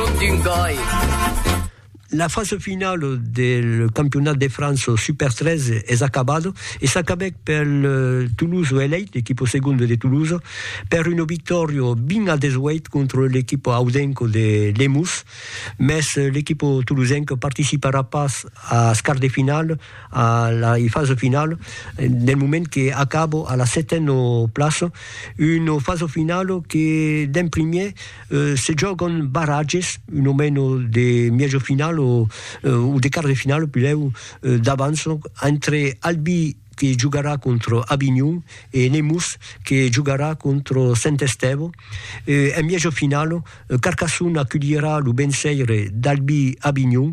D'un gòi. La fasa finala del campionat de França Super 13 es acabada e s'acabèc pel Toulouse Elite, l'equipa segonda de Toulouse, per una victòria 20 a 18 contra l'equipa audenca de Lemús, mès l'equipa toulousenca participarà pas als quarts de finala, a la fasa finala, del moment que acaba a la setena plaça, una fasa finala que d'en primièr Se jògam barratges, un o meno de mièjo final o de quart de final pilhèu d'avans entre Albi que jogarà contra Avinhon e Nemours que jogarà contra Sent Estèvo. En mièjo final Carcassona aculhirà lo venceire d'Albi Avinhon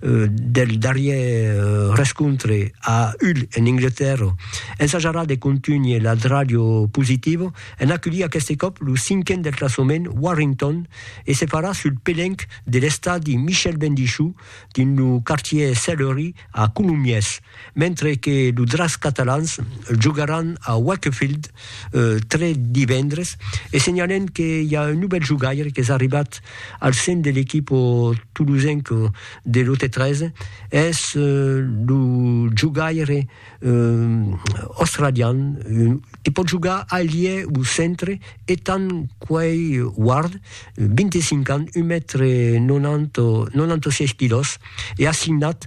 del darrièr rescontre a Hull en Anglatèrra, ensajarà de contunhir la dràlha positiva en aculhir aqueste còp lo cinquen del classament Warrington e se farà sul pelenc de l'estadi Michel Bendichou dins lo quartièr Sellerie a Colomiers. mentre que lo Dracs catalans jogaràn a Wakefield tre divendres e senhalem que i a un novèl jogaire qu'es arribat al sen de l'equipo tolosenc de lo T3 es lo jogaire australian que pòt jogar ailier o centre Ethan Quay Ward 25 ans un mètre 96 quilòs e assignat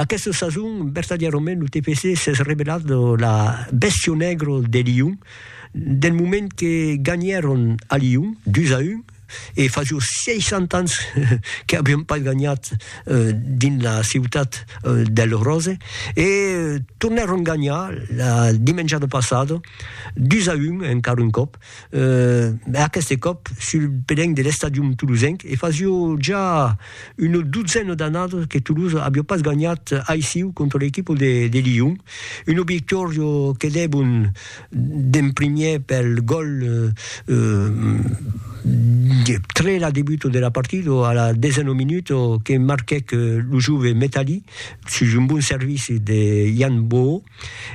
Aquesta sason, vertadièrament, lo TPC s'es revelat la bèstia negra de Lion, del moment que ganhèron a Lion, 2 a 1, e fa jos 60 ans que avián pas ganhat dins la ciutat del Ròse, e tornèron ganhar la dimenjada passada, 2 a 1, encara un còp. e aqueste còp sul pelenc de l'estadium tolosenc, e fasio ja una dotzena d'annadas que Tolosa aviá pas ganhat aissiu contra l'equipa de Lyon, una victòria que debon d'en primièr pel gòl tre la debuta de la partida a la desena minuta que marquèc lo jove Metalli sus un bon servici de Yann Boho,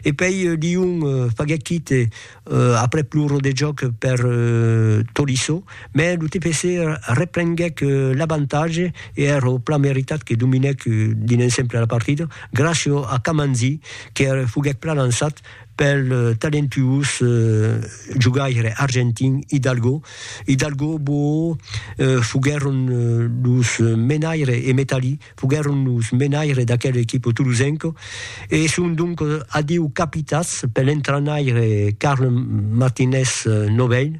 e pei Lyon faguèt quite aprèp lo rodejòc per Tolisso, mai lo TPC reprenguèc l'avantatge e èra plan meritat que dominèc dins l'ensemble la partida, gràcia a Kamanzi que foguèc plan ansat pel talentuós jogaire argentin Hidalgo. Hidalgo, Boo foguèron los menaires e Metalli. Foguèron los menaires d'aquel equipo tolosenco e son donc adiu capitats per l'entrainaire Carl Martinez Novell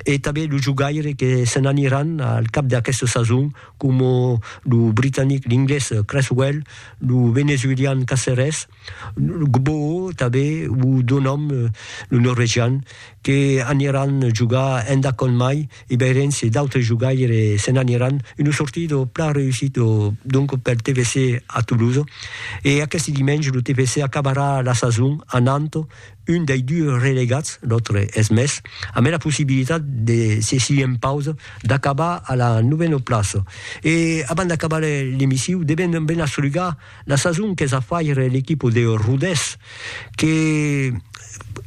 e tanben los jogaires que se n'aniràn al cap d'aquesta sason coma lo britanic, l'inglés Cresswell, lo venezuelian Caceres, Gboo tanben, o do nom lo norvegian, que aniran jogar enda Conn Mai e veirem se d'autres jogaire se n'aniran, una sortida plan reussida donc pel TFC a Toulouse e aqueste dimenge lo TFC acabarà la sason anant un dei dus relegats, l'autre es Metz, ambe la possibilitat de se si en pausa d'acabar a la novena plaça. E abans d'acabar l'emissiu devem ben asrugar La sason qu'es a faire l'equipa de Rodés, que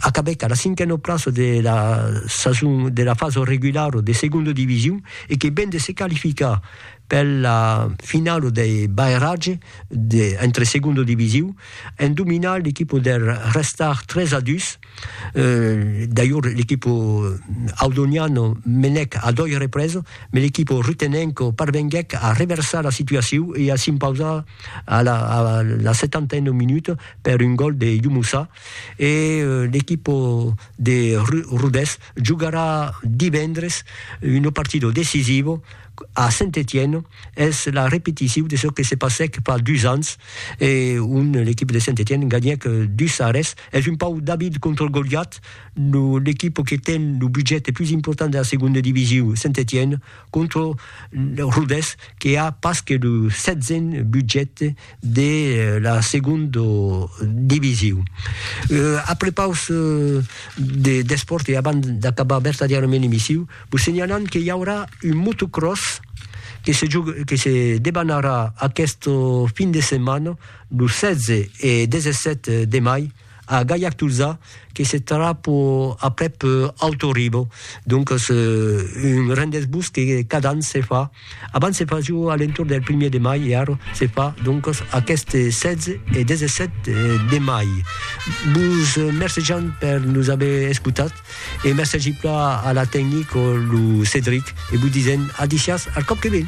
acabèc a la cinquena plaça de la sason de la fasa regulara de segonda division e que ven de se qualificar per la finala dei barratges entre segonda division en dominar l'equipa der Restart 3 a 2. Euh, d'ailleurs, l'equipo audoniano menèc a doi reprèses, me l'equipo rutenenco parvenguèc a reversar la situaciu e a s'impausar a la, a la setantena minuta per un gòl de Youmoussa. E l'equipo de Rodés jogarà divendres una partida decisiva a Saint-Étienne es la repeticiu de çò que se passèc fa dus ans e on l'equipe de Saint-Étienne ganhèc 2 a res. Es un pauc David contra Goliat, l'equipe que ten lo budget pus important de la segonda divisiu, Saint-Étienne, contra Rodés que a pas que lo setzen budget de la segonda division. A prepaus d'espòrt e abans d'acabar vertadièrament l'emissiu, vos senhalam que i aurà un motocròs que se debanarà aquesta fin de setmana, lo 16 e 17 de mai, a Gaillac Tolzà que se trap aprèp Alto Ribo, doncas un rendez-vous que cada an se fa, abans se fasiu a l'entorn del primièr de mai e ara se fa doncas aqueste 16 e 17 de mai. Vos mercejam per nos aver escotat e mercegi plan a la tecnic o lo Cedric e vos disèm a disiás al còp que ven.